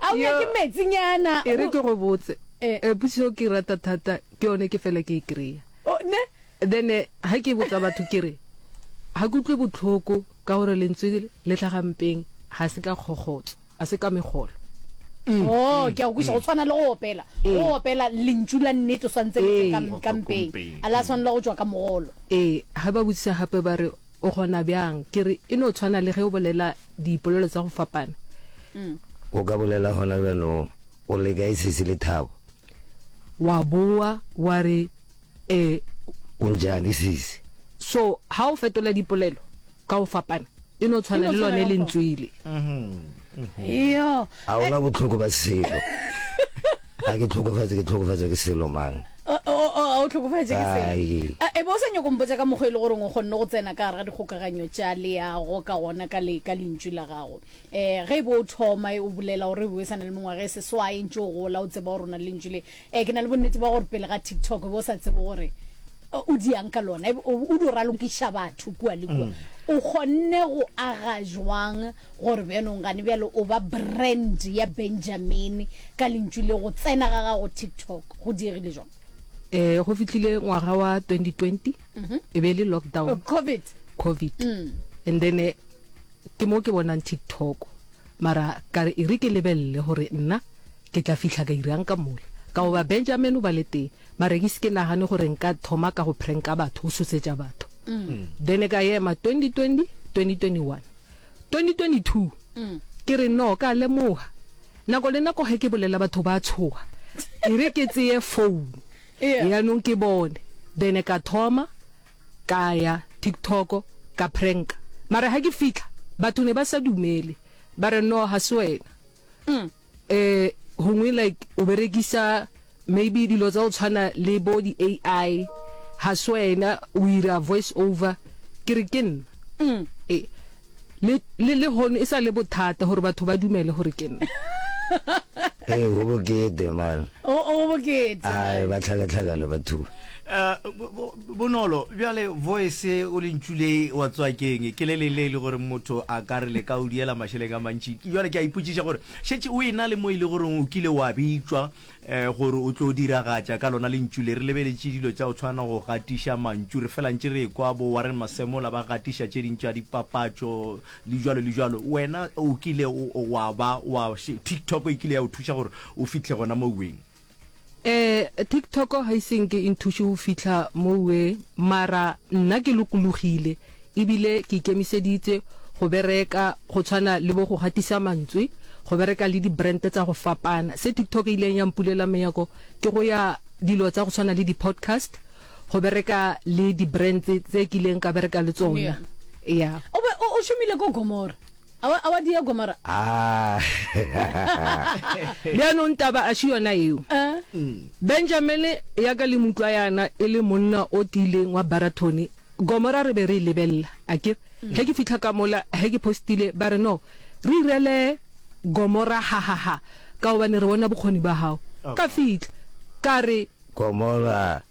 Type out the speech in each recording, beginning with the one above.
Ao ya ke metsinyana. E re ke go botse, potšišo eo ke e rata thata ke yone ke fela ke e kry-a. Then ga ke botsa batho ke re, ga ke utlwe botlhoko ka gore lentswe le tlhaga mpeng ga se ka kgokgotso, ga se ka megolo. Oh, ke a go kwešiša. Go tshwana le go opela. Go opela lentšu la nnete o swantse le tle ka mpeng, ga la swanela go tšwa ka mogolo. Ee, ga ba botšiša gape ba re, O kgona bjang? Ke re, e no tshwana le ge o bolela dipolelo tsa go fapana. O ka bolela gona bjanong, o le kae sesi le thabo? Wa bowa wa re, E. O ntšeae sesi? So, ga o fetola dipolelo ka go fapana, e no tshwana le lone lentswele. yo a ona botlhoko ba selo a ke tlhokofatse ke tlhokofatse ke selo mang o o- o- o tlhokofatše ke selo Ai. A, e be o sa nyako mpotsa ka mokgwa e le goreng o kgonne go tsena ka gare ga dikgokaganyo tša leago ka gona ka le- ka lentšu la gago um ge e be o thoma e o bolela gore e be o sa na le mengwaga e seswae ntse o gola o tseba gore o na le lentšu le Ee, ke na le bonnete bja gore pele ga TikTok o be o sa tsebe gore o diang ka lona, e be o o dio ralokiša batho kua le kua. O kgonne go aga jwang gore bjanong gane bjale o ba brand ya Benjamin ka lentšu le go tsena ga gago TikTok? Go diegile jwang? Ee, go fitlhile ngwaga wa 2020, e be e le lockdown, Oh, COVID. COVID. And then eh, ke mo ke bonang TikTok. Mara ka re e re ke lebelele gore nna Ke tla fihla ka dira'ng ka mola? Ka goba Benjamin o ba le tee, mara ke se ke nagane gore nka thoma ka go pranka batho, go tshosetša batho. Then ka ema 2020, 2021, 2022, ke re no, ka lemoga. Nako le nako ge ke bolela batho ba tshoga, e re ke tseye phone yanong ke bone. Then ka thoma ka ya TikTok ka pranka, mara ge ke fihla batho ne ba sa dumele, ba re no, ga se wena. Ee, gongwe like o berekisa maybe dilo tsa go tshwana le bo di AI ga se wena o ira voice over ke re ke nna mm. e, le le le hono e sa le bothata gore batho ba dumele gore ke nna ee go bokete man o o bokete ai ba tlhakatlhakana batho eh, Bonolo, bjale voice o lentšu le wa tswakeng ke le le le le gore motho a ka re le ka o diela mašeleng a mantši. Bjale ke a ipotšiša gore šetše o ena le mo e le gore o kile wa bitšwa gore o tlo diragatša ka lona lentšu le. Re lebeletše dilo tša go tshwana go gatiša mantšu, re fela ntše re ekwa bo Warren Masemola ba gatiša tše ding tša dipapatšo le bjalo le bjalo. Wena o kile wa ba wa, TikTok e kile ya o thuša gore o fihle gona moweng? Eh TikTok ga ise nke e nthuše go fihla mowe mara nna ke lokologile e bile ke ikemiseditse go bereka go tshwana le bo go gatisa mantswe, go bereka le di brand tsa go fapana. Se TikTok e ileng ya mpulela menyako ke go ya dilo tsa go tshwana le di podcast, go bereka le di brands tse kileng ka bereka le tsona. Yeah. O be o šomile ko Gomora. Awa, awa Diego mara. Ah. Bjanong taba a si yona eo. Eh? Benjamin ya ka le mo utlwa yana e le monna o tiileng wa Baratone. Gomora re be re e lebelela, a ke re. Ge ke fihla ka mola, ge ke postile, ba re, No, re irele Gomora hahaha, ka gobane re bona bokgoni bja gago. Ka fihla, ka re. Gomora.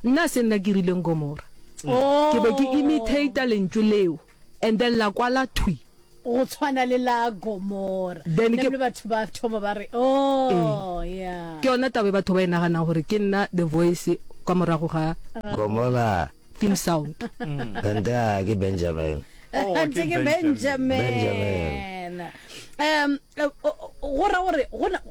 Nna se nna ke rileng Gomora. Ke be ke imitator lentšu leo. And then la kwala thwi. Go tshwana le la Gomora. Then ke batho ba thoma ba re oh yeah. Ke yona tabe batho ba e nagana gore ke nna the voice kwa morago ga Gomora theme sound. Kanta mm. ke Benjamin. Oh, Kanta ke Benjamin. Benjamin. Um eh, go ra gore gona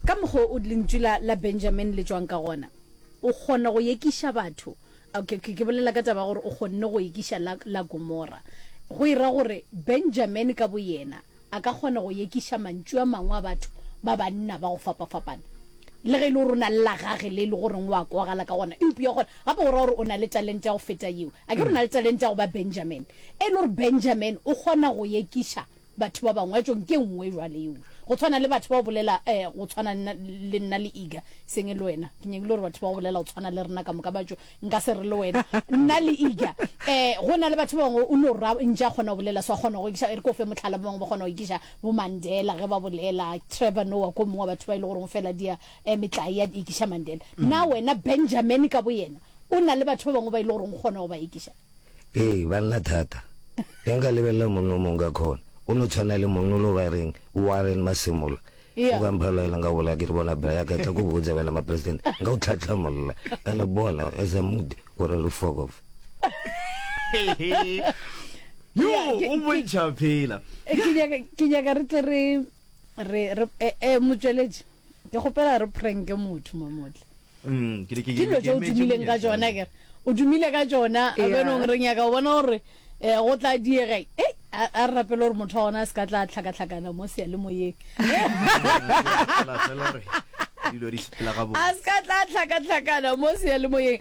ka mokgo o lentswe la la Benjamin le tswang ka gona. O kgona go yekiša batho. Okay, ke bolela ka taba ya gore o kgonne go ekiša la, la Gomora. Go e ra gore Benjamene ka boyena a ka kgona go ekiša mantšu a mangwe a batho ba banna ba go fapafapana. Le ge e le gore o na le la gage le e le goreng o a kwagala ka gona, eupša gona gape o ra gore o na le talente ya go feta yeo. Akere o na le talente ya go ba Benjamene, e le gore Benjamene o kgona go ekiša. Batho ba bangwe, jo, nke nngwe jwale yeo. Go tshwana le batho ba go bolela, eh, go tshwana le nna, le nna le Iga, seng e le wena. Ke nyakile gore batho ba go bolela go tshwana le rena ka moka, ba tšo, nka se re le wena, nna le Iga. Eh, go na le batho ba bangwe, o no ra, ntše a kgona go bolela so, a kgona go ekiša, e re ke o fe mohlala, ba bangwe ba kgona go ekiša bo Mandela ge ba bolela, Trevor Noah ke o mongwe wa batho ba e le goreng o fela dia, eh, metlai ya ekiša Mandela. Na wena Benjamin ka boyena o na le batho ba bangwe ba e le goreng o kgona go ba ekiša? Ee, banna thata. Ge nka lebelela monna o mongwe ka khona, o no tshwana le monna o lo ba reng, Warren Masemola. O ka mpha loela nka bola ke re bona bra yaka tla ko botsa wena mapresidente, nka o tlhatlhamolla. Ene bona as a mood gore re fokof. Yo, o bontšha phela. Ke nyaka re tle re re re eh, eh, motsweletši. ke kgopela re pranke motho mamotle mm, ke dilo tse o dumileng ka tsona kere o dumile ka tsona a benong re nyaka o bona gore um go tla diega e a re rapele gore motho wa gona a se ka tla tlhakatlhakana mo seya le moyeng a se ka tla tlhakatlhakana mo seya le moyeng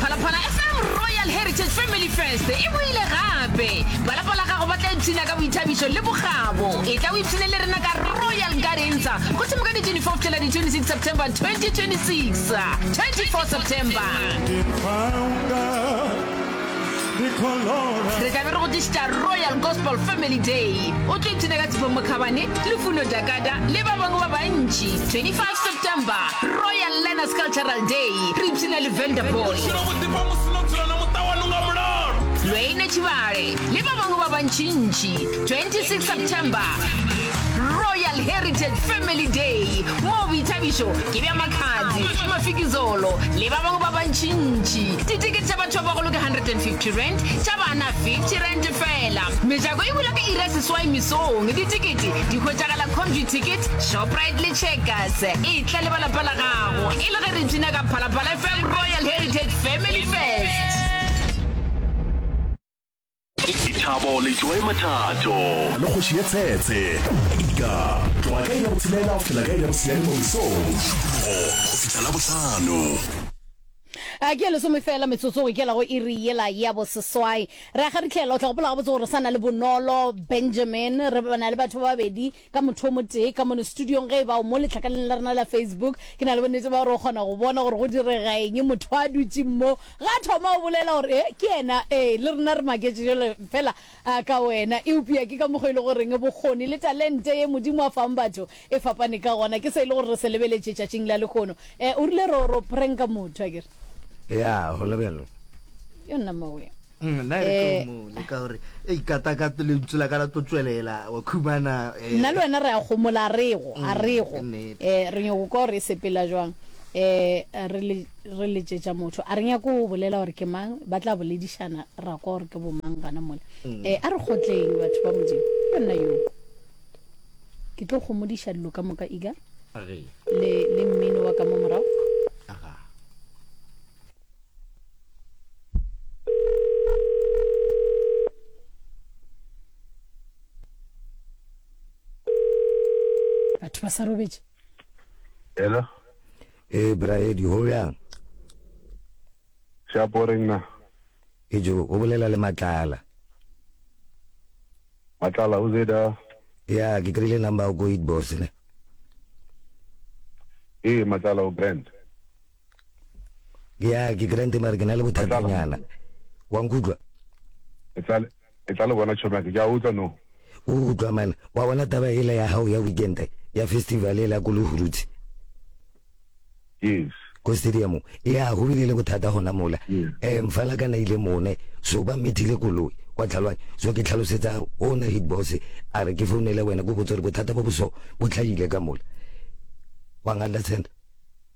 phalaphala fm royal heritage family fest e boile gape balapa la gago ba tla ipshina ka boithabišo le bogabo e tla o ipshine le rena ka royal garensa go thimo ka di-24 tšela di-26 september 2026 24 september re tlabe re go tlišitša royal gospel family day o tlo ipshina ka tshifo mokhabane le funo jakada le ba bangwe ba bantši 25 september royal learners cultural day re ipshina le vanderball lweine tšhibale le ba bangwe ba bantšintši 26 september royal heritage family day moo boithabišo ke bja makhadzi mafikizolo le ba bangwe ba bantšintši Titikete tša batho ba bagolo ke 150 rand, tša bana 50 rand fela. Mejako e bula ka iri ya seswai mesong. Ditikete di hwetšagala Comduticket, Shoprite le Checkers. E tla le ba lapa la gago e le ge re bina ka Phalaphala FM Royal Heritage Family Fest. Dithabo le Joy Mathato. Le kgoši ye tshetse. Ika, tloga ka iri ya botshelela go fihla ka iri ya bosiane mo mesong. Šupologo go fihla la bohlano. a ke lesome fela metsotso go ikela go iri yela ya boseswai ra ga re tlhela o tla gopola gabotse gore sa na le bonolo benjamin re bana le batho ba babedi ka motho o motee ka mono studiong ge e bao mo lehlakaneng la rena la Facebook. Ke na le bonnete ba gore o kgona go bona gore go diregaeng. Motho a dutše mo ga thoma o bolela gore ee, ke yena. Ee, le rena re maketše jalo fela ka wena. Eupša ke ka mokgwa e le goreng bokgoni le talente ye Modimo a fang batho e fapane ka gona ke se e le gore re se lebeletše tšatšing la lehono. O rile ro, ro pranka motho akere? Yaa, go le bjalo. Yona mawe. Mm, nna re tlo mo le ka gore e ikata ka le ntse la ka la tlo tswelela wa khumana eh. nna le wena re a gomola a rego a mm, rego eh re nyoko ka gore e sepela jwang eh re le re le tšetša motho a re nyako go bolela gore ke mang ba tla boledišana ra kwa gore ke bo mang gana mola mm. eh a re gotleng batho ba modimo ke nna yo ke tlo gomodiša dilo ka moka ika le le mmino wa ka mo morago batho ba sa robetše hello e braedi go bjang shaporeng na e jo o bolela le matlala matlala o zeda ya ke kry-ile number o ko it boss ne ee matlala o brand ya ke grant mare ke na le bothatanyana wa nkutlwa e tla le bona tšhomake ke a utlwa no o utlwa man wa bona taba ela ya gago ya weekend ya festival e la ko lehuruthi yes ko stadium ya go bile le bothata gona mola um mfala ka na ile mone so ba methile koloi kwa tlhalwang so ke tlhalosetsa o na hit boss a re ke founele wena ko botsa gore bothata bo boso bo tlhagile ka mola wa nga understand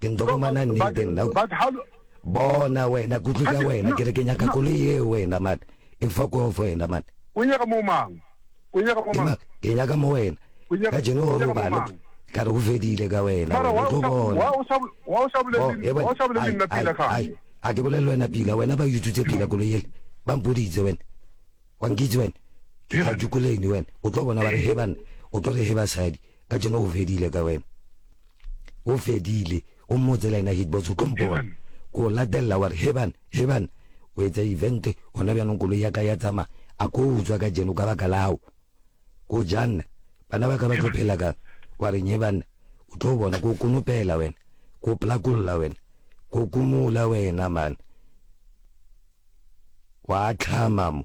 Ke nto fumana nnete nna ko. But how Bona wena kutlo tša wena ke re ke nyaka koloi yeo wena man. E fuck off wena man. O nyaka mo mang? O nyaka mo mang? Ke nyaka mo wena. Ka jeno o robale ka re go fedile ka wena wena o tlo bona. Wa o sa wa o sa bolele wa o sa bolele nna pila ka. A ke bolele wena pila wena ba yututse pila koloi yele. Ba mpoditse wena. Wa nkitse wena. Ke tla jukuleni wena. O tlo bona ba re he banna. O tlo re he basadi. Kajeno o fedile ka wena. O fedile. O mmotse le yena Hitbox ko mpone. Ko o latelela wa re, Heban, Heban, o etsa event gona bjanong koloi ya ka ya tsamaya. A ko o utswa kajeno ka baka la hao. Ko janna. Bana ba ka ba tlo phela kang? Wa reng he banna? O tlo bona. Ko o konopela wena. Ko o plakolla wena. Ko o kumola wena man. Wa tlhama mo.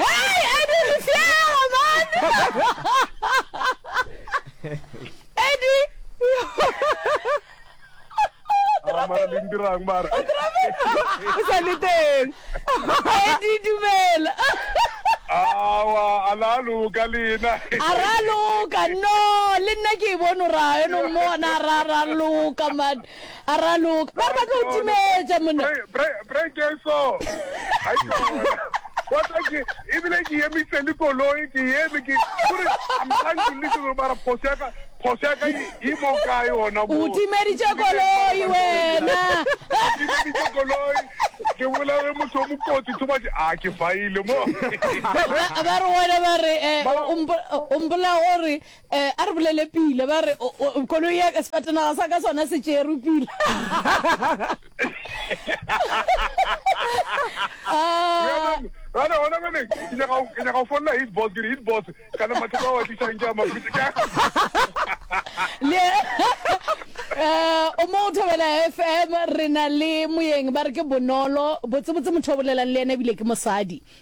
Hey, Eddie Lefjell, man! Eddie! Ah, mara le ndirang mara. O sa le teng. Eddie dumela. Awa, a la loka lena. A ra loka, no, le nna ke e bone ra, eno mmona ra ra loka man. A raloka. Ba re ba tlo timetša monna. Brekeso. Ha ke yona. Wa tla ke ebile ke emise le koloi ke eme ke gore I'm trying to listen to mara phoso ya ka phoso ya ka e mo kae ona mo. O timeditše koloi wena. O timeditše koloi. Ke bolare motho o mokotsi too much. A ke faile mo. Ba re wena ba re o mpolaya gore Ee, a re bolele pila. Ba re, O, o, koloi ya ka, sefatanaga sa ka sona se tšerwe pila. Ah. Ba re, gona bjale, ke nyaka go- ke nyaka go folela hit boss, ke re, hit boss, kana mathata ao a tlišang ke a mabotse ka. Le, eh, o mo o Thobela FM, re na le moyeng, ba re ke Bonolo. Botsebotse motho o bolelang le yena ebile ke mosadi.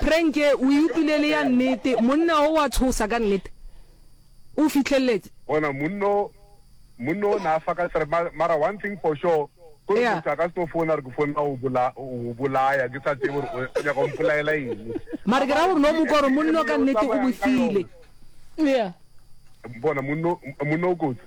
Prenke o e utlwile e le ya nnete, monna o wa tshosa ka nnete. O fihlelletše. Bona monno, monno o ne a fa ka sere, ma, mara one thing for sure, ke gore motho a ka se no founa gore ke founela go bola, go bolaya, ke sa tsebe gore o, o nyaka go mpolaela eng. Mara ke ra gore no mo kwa gore monno ka nnete o bofile. Yeah. Bona monno, monno o kotsi.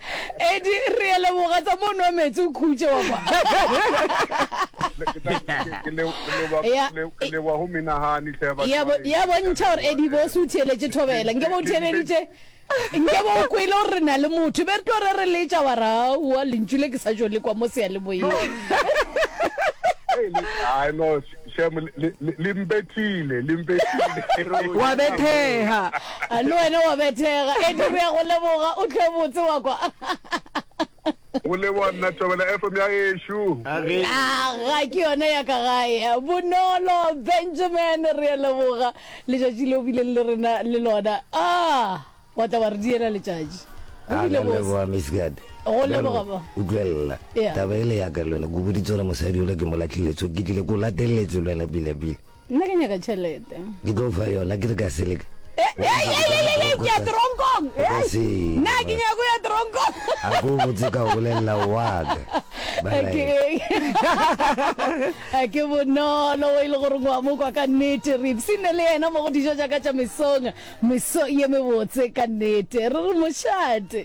Edi re a leboga tsa mo nwa metsi o khutše wa kwa. ya bontšha gore edi bo se o theeletše thobela nke bo o theeleditše nke bo o kwele gore re na le motho be re tlo re re letša wa ra wa lentšu le ke sa tšo le kwa mo seya le moyeng Shem, le, le, le mpethile, le mpethile. Wa bethega. A le wena wa bethega. Eddie, re ya go leboga. O tle botse wa kwa. o le bona tobela fm ya gešu ga ke yone ya ka gae bonolo benjamin re a leboga letšatši le o bileng le rena le lona a ah! Wa tla wa re diela letšatši. Go bile bose. Leboga Miss Gad. Go leboga ba. Utlwelela. Taba ele ya ka lwena, ke boditse gore mosadi ola ke mo latlhile, so ke tlile ko lateletse lwena pila pila. Nna ke nyaka tšhelete. Ke tlo fa yona ke re ka seleka. Ke ya teronkong. Nna ke nyaka go ya teronkong. A ko botse ka bolelela wa ka. a ke bonolo o e le gore ngwa mo kwa ka nnete re ipsine le ena mo go dijo jaaka tša mesong Meso ye mebotse ka nnete. Re re mošate.